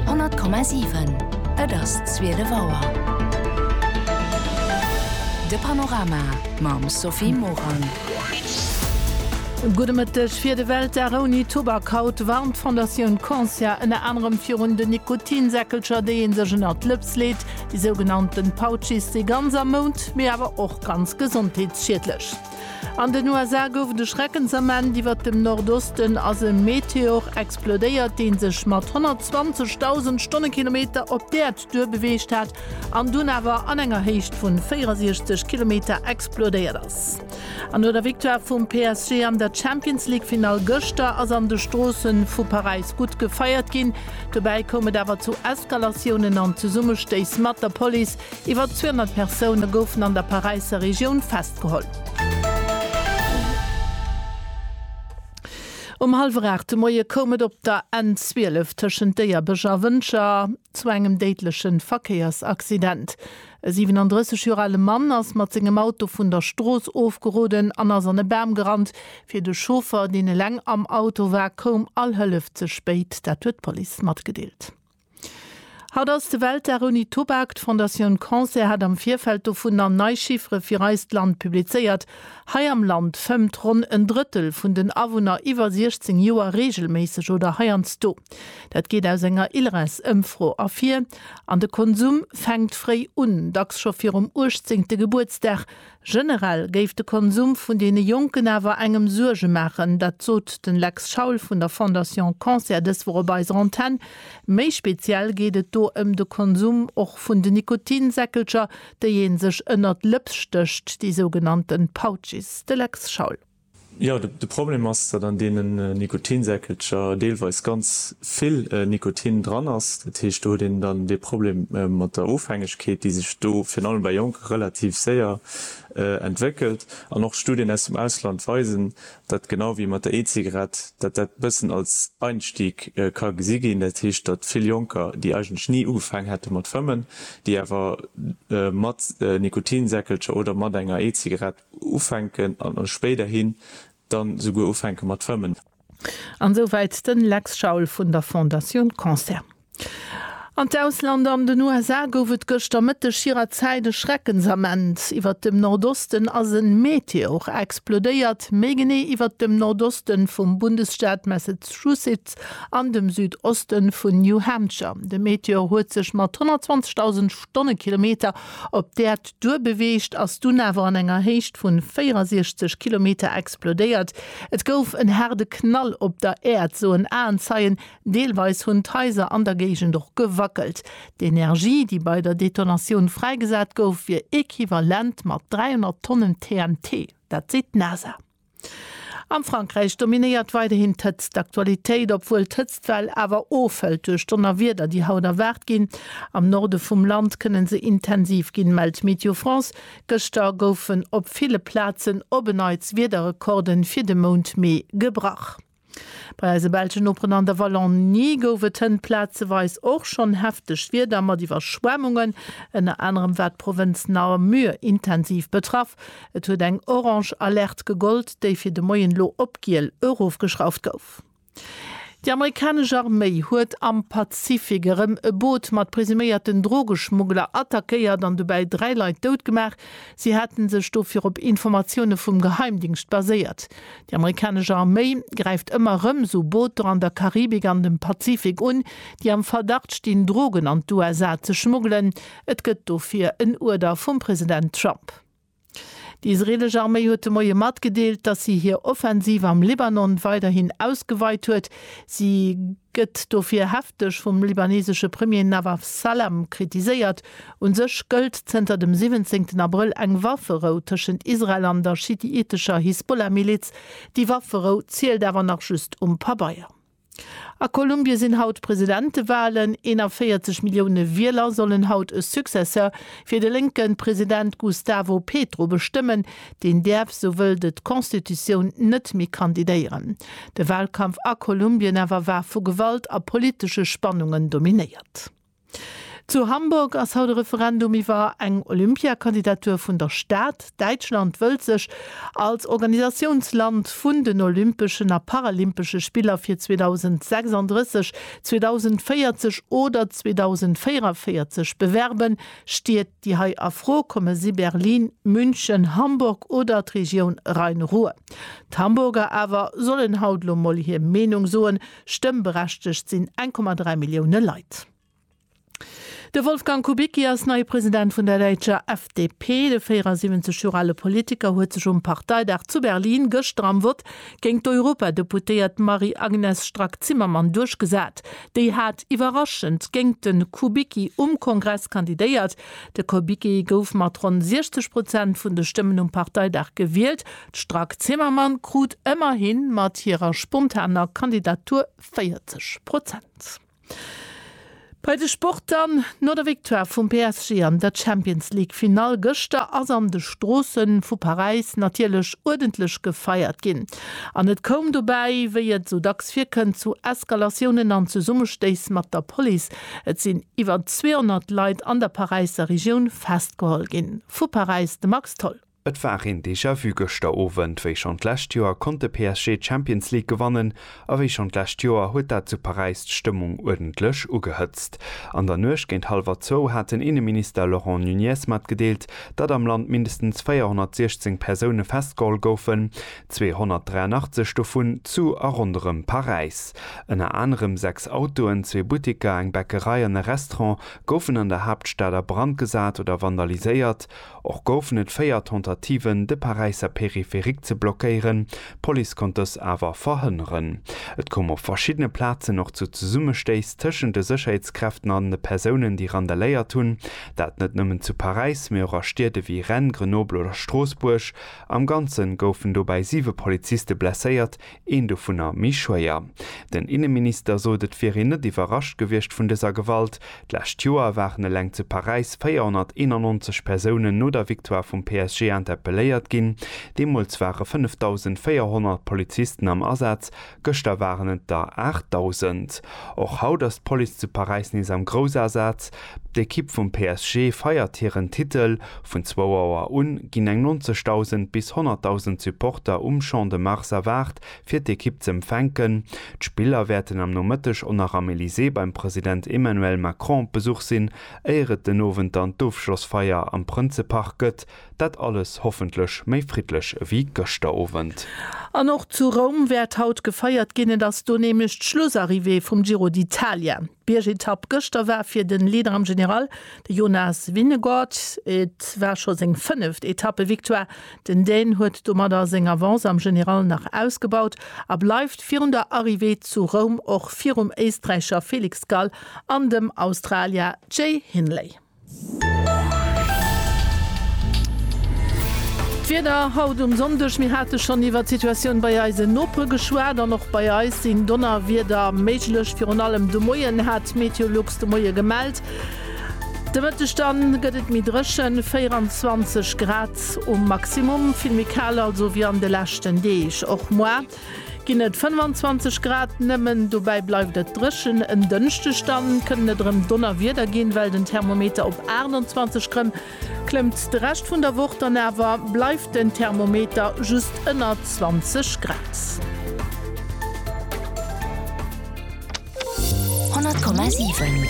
100,7 Et ass 12 Auer. De Panorama mam Sophie Morang. Gudde Mëtteg. Fir de Weltdag ouni Tubak haut warnt d'Fondatioun Consia ënner anerem virun den Nikotinsäckelcher, déi ee sech ënnert d'Lëps leet, déi sougenannten Pouchies, déi ganz am Mount, mee awer och ganz gesondheetsschiedlech. An den USA gouf et e Schreckensament, Iwwert dem Nordosten ass e Meteor explodéiert, dee sech mat 120.000 Stonnekilometer op d'Äerd duerbeweegt hat an dunn awer an enger Héicht vu 64 Kilometer explodéiert ass. An no der Victoire vum PSG an der Champions-League-Finall gëschter ass an de Stroosse vu Paräis gutt gefeiert ginn. Dobäi koum et awer zu Eskalatiounen an Zesummestéiss mat der Police. Iwwer 200 Persoune goufen an der Paräisser Regioun festgeholl. Um hallwer 8 de Moie koum et op der N12 tëschent Déierbech a Wëncher zu engem déidleche Verkéiersaccident. E 37 Joer ale Mann ass mat sengem Auto vun der Strooss ofgeroden an ass an e Bam gerannt. Fir de Chauffer, deen eleng am Auto war, koum all Hëllef ze spéit. Dat huet d'Police matgedeelt. Haut ass de Weltdag ouni Tubak. D'Fondatioun Cancer hat am Virfeld dovunner nei Chiffere fir eist Land publizéiert. Hei am Land fëmmt ronn en Drëttel vun den Awunner iwwer 16 Joer reegelméisseg oder heiansdo. Dat geet aus enger ILRES-Ëmfro ervir. An de Konsum fänkt fréi un, dacks scho virum 18. Gebuertsdag. Generell géif de Konsum vun deene Jonken awer engem Suerge maachen. Dat sot de Lex Schaul vun der Fondation Cancer dës Woch op eiser Antenn. Méi speziell geet et do ëm de Konsum och vun den Nikotinsäckelcher, déi ee sech ënnert d'Lëps stécht, déi sougenannte Pouches. De Lex Schaul. Jo, de Problem ass, datt an deenen Nikotinsäckelcher deelweis ganz vill Nikotin dran ass. Dat heescht, do huet een dann dee Problem mat der Ofhängegkeet, déi sech do virun allem bei Jonke relativ séier entwéckelt. An och Studien aus dem Ausland weisen, datt genau wéi mat der E-Zigarett, datt dat e bëssen als Einstieg ka gesi ginn. Dat heescht, datt vill Jonker, déi eigentlech ni ugefaang hätte mat fëmmen, déi awer mat Nikotinsäckelcher oder mat enger E-Zigarett Ufänken an spéiderhin dann esouguer ufänken mat Fëmmen. An sou wäit den Lex Schaul vun der Fondatioun Cancer. An d'Ausland, An den USA gouf et gëschter Mëtteg hirer Zäit e Schreckensament. Iwwert dem Nordosten ass en Meteor explodéiert, méi genee iwwert dem Nordoste vum Bundesstaat Massachusetts an dem Südoste vun New Hampshire. De Meteor huet sech mat 120.000 Stonnekilometer op d'Äerd duerbeweegt, ass dunn awer an enger Héicht vun 64 Kilometer explodéiert. Et gouf en haarde Knall op der Äerd, soen Aenzeien. Deelweis hunn d'Haiser an der Géigend och gewackelt. D'Energie, déi bei der Detonatioun fräigesat gouf, wier equivalent mat 300 Tonnen TNT. Dat seet d'NASA. Am Frankräich dominéiert weiderhin d'Hëtzt d'Aktualitéit, obwuel d'Hëtztwell awer ofhëlt duerch Donnerwieder, déi haut erwaart ginn. Am Norde vum Land kënne se intensiv ginn, mellt Météo France. Gëschter goufen op ville Plazen op en Neits Wiederrekorde fir de Mount Mee gebrach. Bei eise belschen Noperen an der Wallonie gouf et hënt plazeweis och schonn hefteg Wieder mat Iwwerschwemmungen. Ënner anerem war d'Provënz Namur intensiv betraff. Et huet eng orange Alerte gegollt, déi fir de Moien elo op giel erofgeschrauft gouf. Déi amerikanesch Arméi huet am Pazifik erëm e Boot mat presuméierten Drogeschmuggler attackéiert an dobäi dräi Leit dout gemaach. Si hate sech do virop Informatioune vum Geheimdingscht baséiert. Déi amerikanesch Arméi gräift ëmmer erëm esou Booter an der Karibik an dem Pazifik un, déi am Verdacht stinn, Drogen an d'USA ze schmuggelen. Et gëtt dofir en Uerder vum President Trump. Déi israeelesch Arméi huet de Moie matgedeelt, datt si hir Offensiv am Libanon weiderhin ausgeweit huet. Si. gëtt dofir hefteg vum libanesesche Premier Nawaf Salam kritiséiert. U sech gëllt zënter dem 17 Abrëll eng Wafferou tëschent Israel an der schiitescher Hisbollah-Miliz. Déi Wafferou zielt awer nach just um Pabeier. A Kolumbie sinn haut Presidentewalen. 41 Millioune Wieler sollen haut e Successeur fir de lénke President Gustavo Petro bestëmmen. Deen däerf, sou wëllt et d'Constitutioun, net méi kandidéieren. De Wahlkampf a Kolumbien awer war vu Gewalt a politesche Spannungen dominéiert. Zu Hamburg ass haut e Referendum iwwer eng Olympiakandidatur vun der Stad. Däitschland wëllt sech als Organisatiounsland vun den Olympeschen a Paralympesche Spiller fir 2036, 2040 oder 2044 bewerben, steet. Déi hei a Fro komme si Berlin, München, Hamburg oder d'Regioun Rhein-Ruhr. D'Hamburger awer sollen haut elo mol hir Meenung soen. Stëmmberechtegt sinn 1,3 Millioune Leit. De Wolfgang Kubicki ass neie President vun der däitscher FDP. De 74 Joer ale Politiker huet sech um Parteidag zu Berlin gëschter am Vott géint d'Europadeputéiert Marie-Agnes Strack-Zimmermann duerchgesat. Déi hat iwwerraschend géingt de Kubicki um Kongress kandidéiert. De Kubicki gouf mat ronn 60 Prozent vun de Stëmmen um Parteidag gewielt. D'Strack-Zimmermann krut ëmmerhi mat hirer spontaner Kandidatur 40 Prozent. Bei de Sport dann, No der Victoire vum PSG an der Champions-League-Finall gëschter ass an de Stroosse vu Paräis natierlech uerdentlech gefeiert ginn. An et koum dobäi, wéi et esou dacks virkënnt, zu Eskalatiounen an Zesummestéiss mat der Police. Et sinn iwwer 200 Leit an der Paräisser Regioun festgeholl ginn. Vu Paräis de Max Tholl. Et war een Déjà-vu gëschter Owend. Wéi schonn d'lescht Joer konnt de PSG d'Champions League gewannen a wéi schonn d'lescht Joer huet dat zu Paräis d'Stëmmung uerdentlech ugehëtzt. An der Nuecht géint hallwer zwou hat den Inneminister Laurent Nunez matgedeelt, datt am Land mindestens 416 Persoune festgeholl goufen, 283 dovun zu a ronderëm Paräis. Ënner anerem sechs Autoen, zwee Butteker, eng Bäckerei an e Restaurant goufen an der Haaptstad a Brand gesat oder vandaliséiert. Och goufen et véier Tentativen, de Paräisser Périphérique ze blockéieren, d'Police konnt dës awer verhënneren. Et koum op verschiddene Plazen och zu Zesummestéiss tëschent de Sécherheetskräften an de Persounen, déi randaléiert hunn. Dat net nëmmen zu Paräis, mee och a Stied ewéi Rennes, Grenoble oder Stroossbuerg. Am Ganze goufen dobäi siwe Poliziste blesséiert, een dovunner méi schwéier. Den Inneminister sot, et wier een net iwwerrascht gewiescht vun dëser Gewalt. D'lescht Joer waren eleng zu Paräis 491 Persounen no der Victoire vum PSG interpelléiert ginn. Deemools ware 5.400 Polizisten am Asaz. Gëschter waren et der 8.000. Och haut ass d'Police zu Paräis nees am Groussasaz. D'Ekipp vum PSG feiert hiren Titel. Vun zwou Auer un ginn eng 90.000 bis 100.000 Supporter um Champ de Mars erwaart, fir d'Ekipp z'empfänken. D'Spiller wäerten am Nomëtteg och nach am Elysée beim President Emmanuel Macron op Besuch sinn, éier et den Owend dann d'Ofschlossfeier am Prënzepark gëtt. Dat alles hoffentlech méi friddlech ewéi gëschter Owend. An och zu Roum wäert haut gefeiert ginn. Et ass do nämlech d'Schlussarrivée vum Giro d'Italia. D'Biergetapp gëschter war fir de Leader am General, de Jonas Vingegaard. Et war scho seng fënneft Etappe-Victoire. Den Dän huet domadder seng Avance am General nach ausgebaut a bleift virun der Arrivée zu Roum och virum Éisträicher Felix Gall an dem Australier Jay Hindley. D'Wieder haut um Sonndeg, Mir hate schonn iwwert d'Situatioun bei eisen Nopere geschwat an och bei eis sinn Donnerwieder méiglech. Virun allem de Moien hat d'Meteolux de Moie gemellt. De Mëtteg dann gëtt et méi dréchen, 24 Grad um Maximum, vill méi kal also wéi an de leschten Deeg. Och moar. Ginn et 25 Grad nëmmen, dobäi bleift et dréchen. En Dënschdeg dann kënnen et erëm Donnerwieder ginn, well den Thermometer op 28 Grem klëmmt. De Rescht vun der Woch dann awer bleift den Thermometer just ënner 20 Grad. 100,7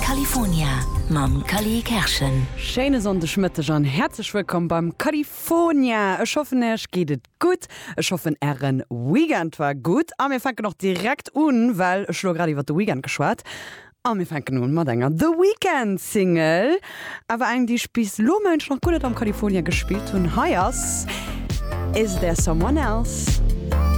California mam Cally Kerschen. Schéine Sonndegmëtteg an häerzlech wëllkomm beim California. Ech hoffen, Äerch geet et Gutt, ech hoffen ären Weekend war gutt a mir fänken och direkt un, well ech elo grad iwwert de Weekend geschwat a mir fänken un mat enger The Weekend Single, awer eng déi ech bis elo mengen ech nach guer net am California gespillt hunn. Hei ass Is There Someone Else.